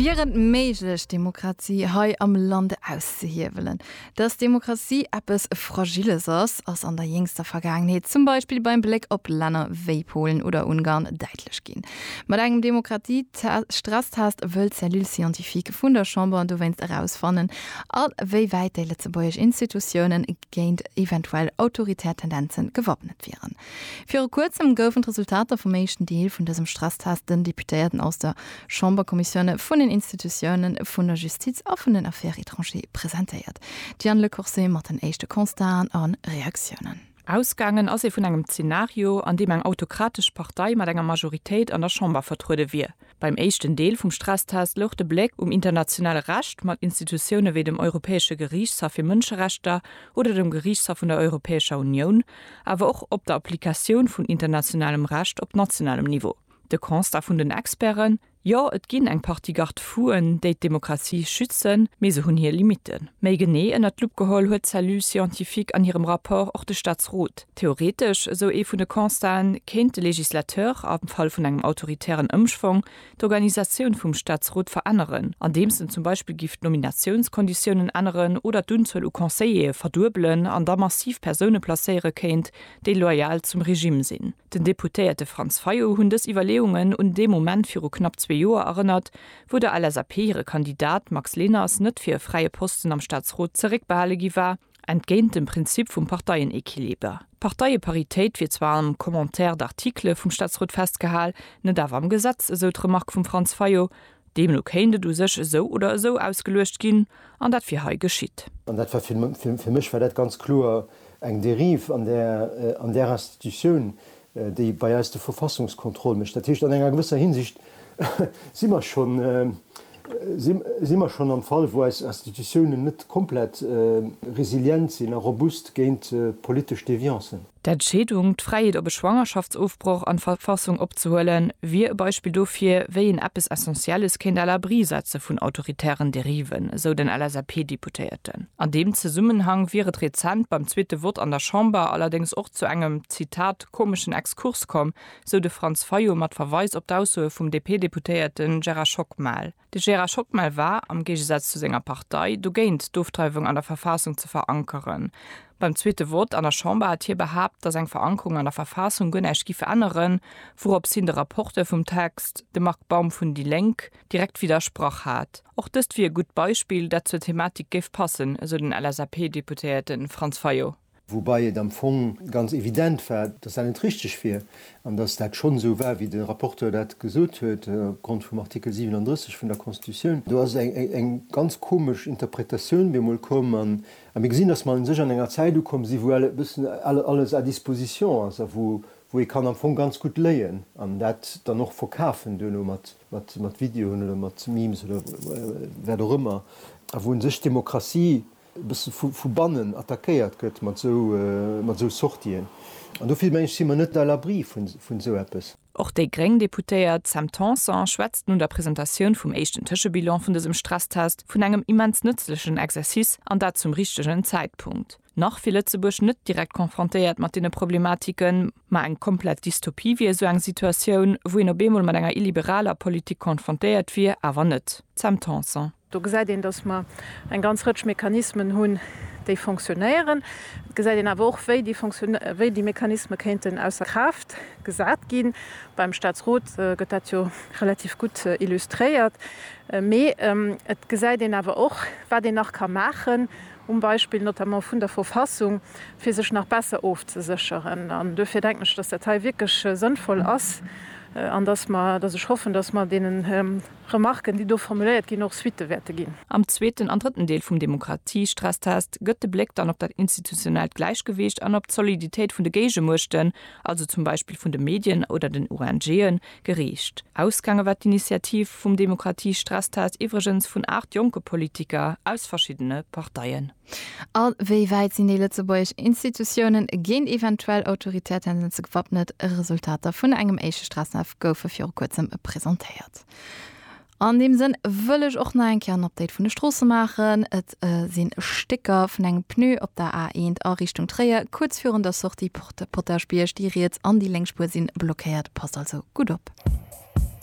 Wier et méiglech, d'Demokratie hei am Land auszehiewelen? Dass d'Demokratie eppes Fragiles ass, ass an der jéngster Vergaangenheet, zum Beispill beim Bléck op Länner wéi Polen oder Ungarn, däitlech ginn. Mat engem Demokratie-Stresstest wëll d'Cellule scientifique vun der Chamber dowéinst erausfannen, a wéi wäit déi lëtzebuergesch Institutiounen, géint eventuell autoritär Tendenzen gewappnet wieren. Viru kuerzem goufen d'Resultater vum éischten Deel vun dësem Stresstest den Deputéierten aus der Chamberkommissioune vun den Institutiounen, vun der Justiz a vun den Affaires étrangères presentéiert. D'Diane Le Corset mat den éischte Constaten a Reaktiounen. Ausgaangen ass ee vun engem Zenario, an deem eng autokratesch Partei mat enger Majoritéit an der Chamber vertruede wier. Beim éischten Deel vum Stresstest louch de Bléck um internationale Recht mat Institutioune wéi dem Europäesche Geriichtshaff fir Mënscherechter oder dem Geriichtshaff vun der Europäescher Unioun, awer och op der Applikatioun vun internationalem Recht op nationalem Niveau. De Constat vun den Experten, Jo, et ginn eng Partie Garde-fou'en, déi d'Demokratie schützen, mee se hunn hir Limitten. Méi genee ënnert d'Lupp geholl huet d'Cellule scientifique an hirem Rapport och de Staatsrot. Theoretesch, esou ee vun de Constaten, kéint de Législateur, am Fall vun engem autoritären Ëmschwong, d'Organisatioun vum Staatsrot veränneren, andeems en zum Beispill giff d'Nominatiounskonditiounen änneren oder d'Unzuel u Conseillere verduebelen an da massiv Persoune placéiere kéint, déi loyal zum Regime sinn. Den Deputéierte Franz Fayot hunn dës Iwwerleeungen un dee Moment viru knapp zwee Joer erënnert, wou der LSAP hire Kandidat Max Leners net fir e fräie Posten am Staatsrot zeréckbehale gi war, Entgéint dem Prinzip vum Parteienequiliber, Parteie-Paritéit, wier zwar am Commentaire d'articles vum Staatsrot festgehal, net awer am Gesetz, esou d'Remark vum Franz Fayot. Deemno kéint et u sech esou oder esou ausgeluecht ginn, an dat wier hei geschitt. An dat war, fir mech war dat ganz kloer eng Dérive an där Institutioun, déi bei eis de Verfassungskontroll mécht. Dat heescht, an enger gewësser Hinsicht si mer schonn, si mer schonn am Fall, wou eis Institutiounen net komplett resilient sinn a robust géint politesch Deviance. D'Entscheedung, d'Fräiheet op e Schwangerschaftsofbroch an d'Verfassung opzehuelen, wier e Beispill dofir, wéi een eppes Essentielles kéint à l'abri setze vun autoritären Dériven, esou den LSAP-Deputéierten. An deem Zesummenhang wier et rezent beim zweete Vott an der Chamber allerdéngs och zu engem. Zitat, komeschen Exkurs komm, sou de Franz Fayot mat Verweis op d'Aussoe vum DP-Deputéierte Gerard Schockmel. De Gerard Schockmel war, am Géigesaz zu senger Partei, dogéint d'Ofdreiwung an der Verfaassung ze verankeren. Beim zweete Vott an der Chamber hat hie behaapt, datt eng Verankerung an der Verfaassung guer näischt giff änneren, wouroops hien de Rapporteur vum Text, de Marc Baum vun déi Lénk, direkt widdersprach hat. Och dëst wier e gutt Beispill, dat zur Thematik géif passen, esou den LSAP-Deputéierte Franz Fayot. Woubai et am Fong ganz evident war, dass dat net richtig wier an dass dat schonn esou war, wéi de Rapporteur dat gesot huet, opgrond vum Artikel 37 vun der Constitutioun. Do ass eng ganz komesch Interpretatioun bemol komm a mir gesinn, dass mer u sech an enger Zäit ukomm sinn, wou e bëssen alles à disposition ass a wou ee kann am Fong ganz gutt léien an dat dann och verkafen duerno mat Videoen oder mat Memes oder wat och ëmmer a wou u sech d'Demokratie e bësse vu bannen attackéiert gëtt mat esou Sortien. An do vill, meng ech, si mer net à l'abri vun esou eppes. Och déi gréng Deputéiert Sam Tanson schwätzt no der Presentatioun vum éischten Tëschebilan vun dësem Stresstest vun engem immens nëtzlechen Exercice, an dat zum richtegen Zäitpunkt. Nach wier Lëtzebuerg net direkt confrontéiert mat deene Problematiken, ma eng komplett Dystopie wier esou eng Situatioun, wou een op eemol mat enger illiberaler Politik confrontéiert wier, awer net. Sam Tanson. Do gesäit een, dass mer eng ganz Rëtsch Mechanismen hunn, déi fonctionnéieren. Et gesäit een awer och, wéi déi fonctionné, wéi déi Mechanisme kéinten ausser Kraaft gesat ginn. Beim Statsrot gëtt dat jo relativ gutt illustréiert. Mee et gesäit een awer och, wat een nach ka maachen, um Beispill notamment vun der Verfassung, fir sech nach besser ofzesécheren. An duerfir denken ech, dass dat hei wierklech sënnvoll ass an dass mer, dass ech hoffen, dass mer deenen, Remarken, déi do formuléiert ginn, och Suitte wäerte ginn. Am zweeten an drëtten Deel vum Demokratiestresstest gëtt de Bléck dann op dat institutionellt Gläichgewicht an op d'Soliditéit vun de Géigemuechten, also zum Beispill vun de Medien oder den ONGen, geriicht. Ausgaange war d'Initiativ vum Demokratiestresstest iwwregens vun 8 jonke Politiker aus verschiddene Parteien. A wéi wäit sinn déi lëtzebuergesch Institutiounen géint eventuell autoritär Tendenze gewappnet? Resultater vun engem éischte Stresstef goufe viru kuerzem presentéiert. An deem Sënn wëll ech och nach eng Kéier en Update vun de Stroosse maachen. Et si Stécker vun engem Pneu op der A1 a Richtung Tréier, kuerz virun der Sortie Porte Potaschbierg. Déi riets an déi lénk Spuer si blockéiert, passt also gutt op.